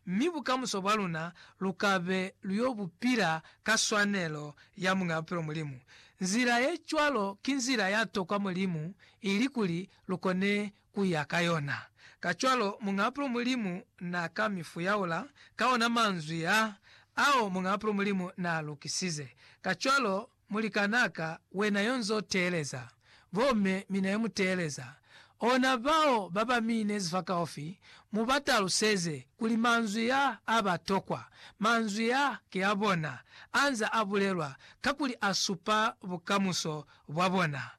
mi bukamuso bwa luna lu ka be lu yo bu pila ka swanelo ya Muñ'a Bupilo Mulimu. Nzila ye cwalo ki nzila ya tokwa Mulimu ili kuli lu kone ku ya ka yona. Kacwalo, Muñ'a Bupilo Mulimu n'a ka mi fuyaula ka ona manzwi a ao Muñ'a Bupilo Mulimu n'a lukisize. Kacwalo, Mulikanaka wena yo nz'o teeleza, bo me mi na yo mu teeleza. Ona bao ba ba mi inezi fa kaufi, mu ba taluseze kuli manzwi ya a ba tokwa. Manzwi ya ki a bona, a nz'a a bulelwa, kakuli a supa bukamuso bwa bona.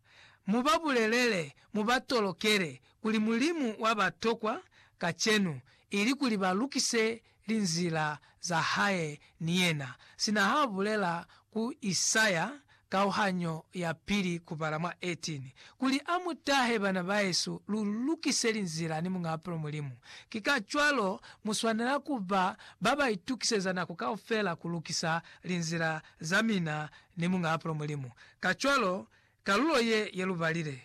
Mu ba bulelele, mu ba tolokele, kuli Mulimu wa ba tokwa kacenu, ili kuli ba lukise linzila za hae ni yena, sina ha bulela ku Isaya, kauhanyo ya pili kubala mwa 18, kuli a mu tahe, Bana baesu, lu lukise linzila ni Muñ'a Bapilo Mulimu. Ki kacwalo, mu swanela ku ba ba ba itukiseza nako kaufela ku lukisa linzila za mina ni Muñ'a Bapilo Mulimu. Kacwalo, kalulo ye ye lu balile,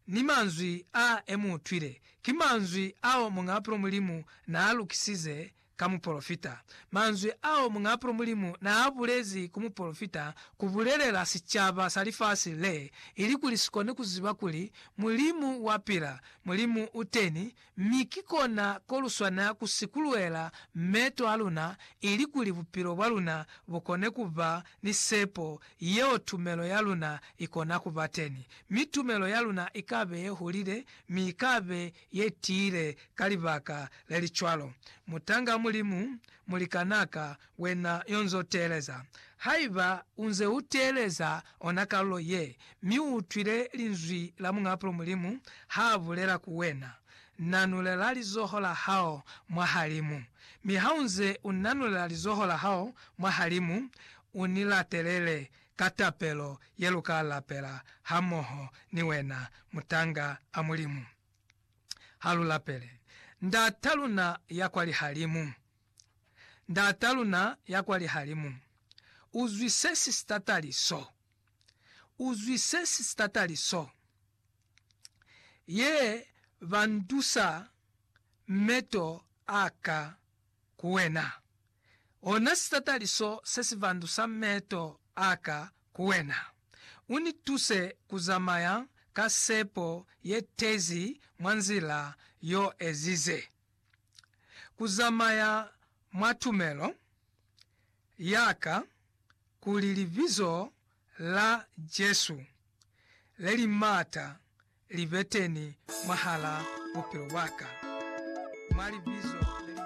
ni manzwi a e mu utwile, ki manzwi ao Muñaapulo Mulimu na a lukisize ka mupolofita. Manzwi ao Muñaapulo Mulimu na a bulezi ku mupolofita ku bulelela sicaba sa lifasi le, ilikuli si kone ku ziba kuli Mulimu wa pila, Mulimu u teni, Mi ki kona ko lu swanela ku sikuluela meeto a luna ilikuli bupilo bwa luna bu kone ku ba ni sepo yeo tumelo ya luna i kona ku ba teni. Mi tumelo ya luna i ka be ye hulile, mi i ka be ye tiile ka libaka le li cwalo. Mutanga Mulimu, mulikanaka, Wena yo nz'o teeleza. Haiba u nze u teeleza ona kalulo ye, mi u utwile Linzwi la Muñ'apulo Mulimu ha bulela ku wena, Nanulela lizoho la hao mwa halimu. Mi ha u nze u nanulela lizoho la hao mwa halimu, u ni latelele ka tapelo ye lu ka lapela hamoho ni wena, mutanga a Mulimu. Ha lu lapele. Ndat'a luna ya kwa lihalimu. Ndata luna ya kwa lihalimu, u zwi se si sitatali so. U zwi se si sitatali so. Ye ba ndusa meto a ka ku wena. Ona sitatali so se si vandusa meto a ka ku wena. U ni tuse ku zamaya ka sepo ye tezi mwa nzila y'o ezize. ku zamaya mwa tumelo ya ka kuli Libizo la Jesu le li m'ata li be teni mwahal'a bupilo bwa ka, mwa libizo le li m'ata.